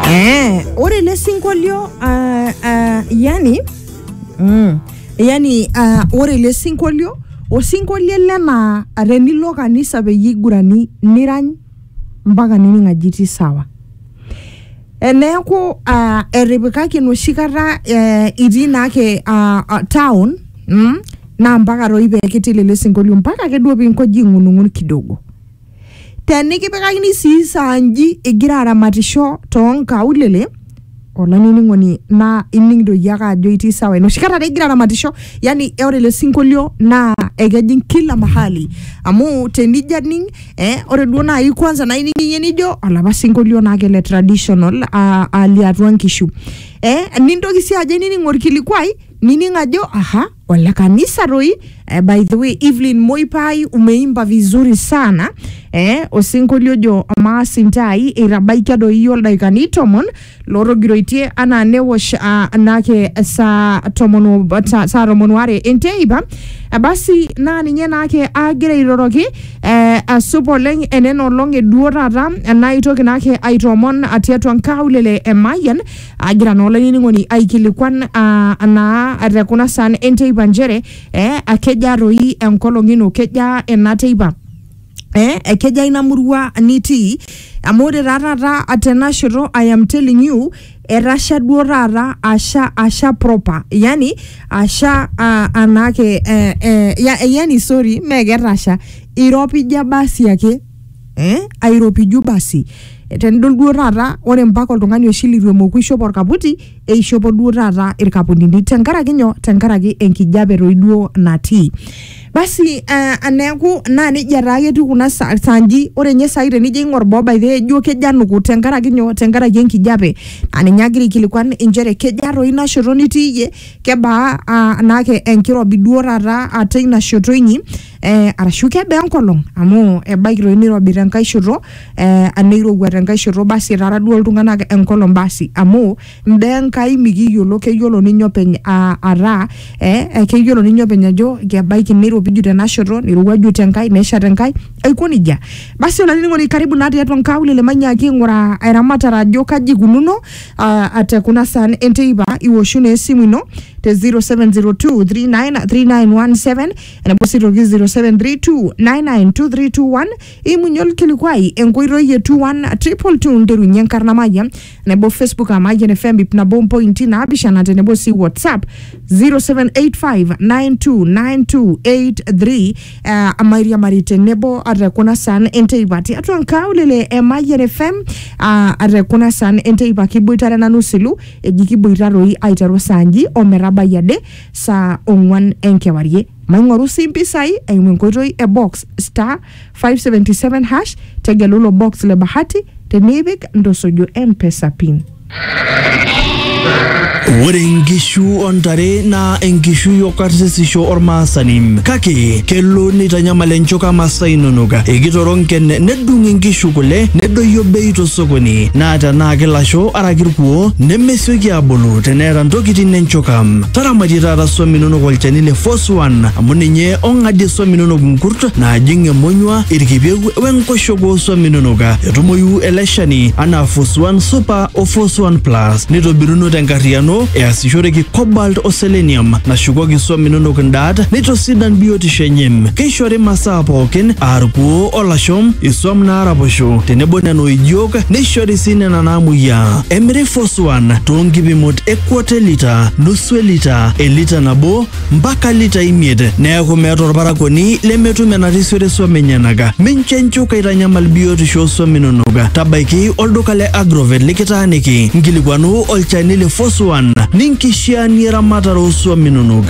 Eh, ore ele sinkolio ah, ah, yani mm, yani ah, ore ele sinkolio osinkolio ele naa ah, tenilo kanisa peyie igurani nirany mpaka nining aji itii sawa Eh, neeku ah, etipikaki enoshi kata eh, itii naake ah, ah, town mm, naa mpaka toi pee kitil ele sinkolio mpaka ake duo piinkoji ing'unung'un kidogo Te nikipikakini sii saa nji igira aramatisho too nkaulele, olainining'oni naa ining doi iyie ake ajo itii sawa. Enoshi kata taa igira aramatisho, yani ore ele sinkolio naa ekejing kila mahali amu tenijo aning eh ore duo naaji kwanza naining'ie nijo olapa sinkolio naa ake le traditional aa aa liatua nkishu. Eh nintoki sii ajo ainining orkilikuai nining ajo aha. ole kanisa roi eh, by the way evelyn moipai umeimba vizuri sana eh, osinkolio ojo amaa sintai eitabaikia doi iyie oldaikani tomon lorogiroitie anaa newosh ah, naake saa tomon o- sa- saa tomon ware enteipa Eh, basi naa ninye naake agira airoroki eh, asup oleng enena olong eduo taata enaitoki naake aitoomon tiatua nkaulele emayian agira naa olainining'oni aikilikuan ah, naa te kuna saan enteipa nchere eh, akejaa toi enkolong ino kejaa ena teipa eh, ekejaa ina murua nitii amu ore taa taata tena shoto I am telling you etasha duo taata asha asha proper yani asha ah, anaake eh, eh, ya, yani sorry mee ketasha iropija basi ake eh, airopiju basi Eh, tenidol duo taata ore mpaka oltung'ani oshi litu emoku ishop orkaputi eishopo duo taata irkaputini tenkaraki nyoo tenkaraki enkijape toi duo natii basi eh, neeku naa nejia taa ketiu kuna sa- sanji ore nye sai tenijo aing'or boo by the way ijo kejo anuku tenkaraki nyoo tenkaraki enkijape naa ninye agira aikilikuan inchere kejaa toi ina shoto nitii iyie kebaa ah, naake enkirobi duo taata ah, teina shoto inyi eh, arashu kebaa enkolong amu ebaiki toi nirobi tenkae shoto eh, aneirowua tenkae shoto basi etara duo iltung'anak enkolong basi amu imbaa enkai mikiyiolo keyiolo ninye openy ah, ataa eh, eh, keyiolo ninye openy ajo kebaiki neiropiju tena shoto neirowuaju tenkae nesha tenkae aiko nejia basi olainining'oni karibu naa tiatua nkaulele manyaaki aing'uraa eramatare ajo kaji ikununo ah, ah, tekuna saan enteipa iwoshu naa esimu ino te 0702 393917 enapo sii toki 0732992321 imunye olkilikuai enkoitoi e 21222 nterunye enkarna mayian nebo facebook aa mayian fm ip nabo mpointi naapishana tenebo sii whatsapp 0785929283 eh, amairiamari tenebo ate kuna saan enteipa tiatua nkaulele e mayian fm ah, ate kuna saan enteipa kiboitare nanu silu eji kiboita toi aiteru saa nji ometabai ade saa ong'uan enkewarie. Maing'oru sii mpisai eimu enkoitoi e box star 577 hash tegelu ilo box le bahati tenipik ntosojo mpesa pin. Ore inkishu o ntare naa enkishui o karsisisho olmaasani kake kelo neitanyamal enchoka masaa inonok. Ekitoroo nken nedung inkishu kule nedoyio bei tosokoni naa tenaa kilasho araki irkuoo nemesioki aabulu teneeta ntokitin enchokam. Taramatie taata swam inonok olchani le Force One amu ninye ong'adie swam inonok nkurt naajing emonyua, irkipieu we nkoshoke oo swam inonok. Etumoyu ele shani anaa Force One Super o Force One Plus neitobiruno tenkarriyiano easishoreki cobalt o selenium nashukoki swam inonok ndaat neitosidan biotisho enye. Keishori masaa pookin aa irkuoo o lasho, iswam naaraposho tenebo nena oijiok neishori sii nena naamuoyiaa. Emiri Foswan too nkipimot e kwata e lita, nusu e lita, e lita nabo mpaka lita imiet neaku meeta olparakuoni lemetum enarisiore swam enyenak. Mincho enchuka eitanyamal biotisho oo swam inonok. Tabaiki olduka le Agrovet likitaaniki nkilikuanu olchani le Foswan ninkishiaanie eramatare oo swam inonok.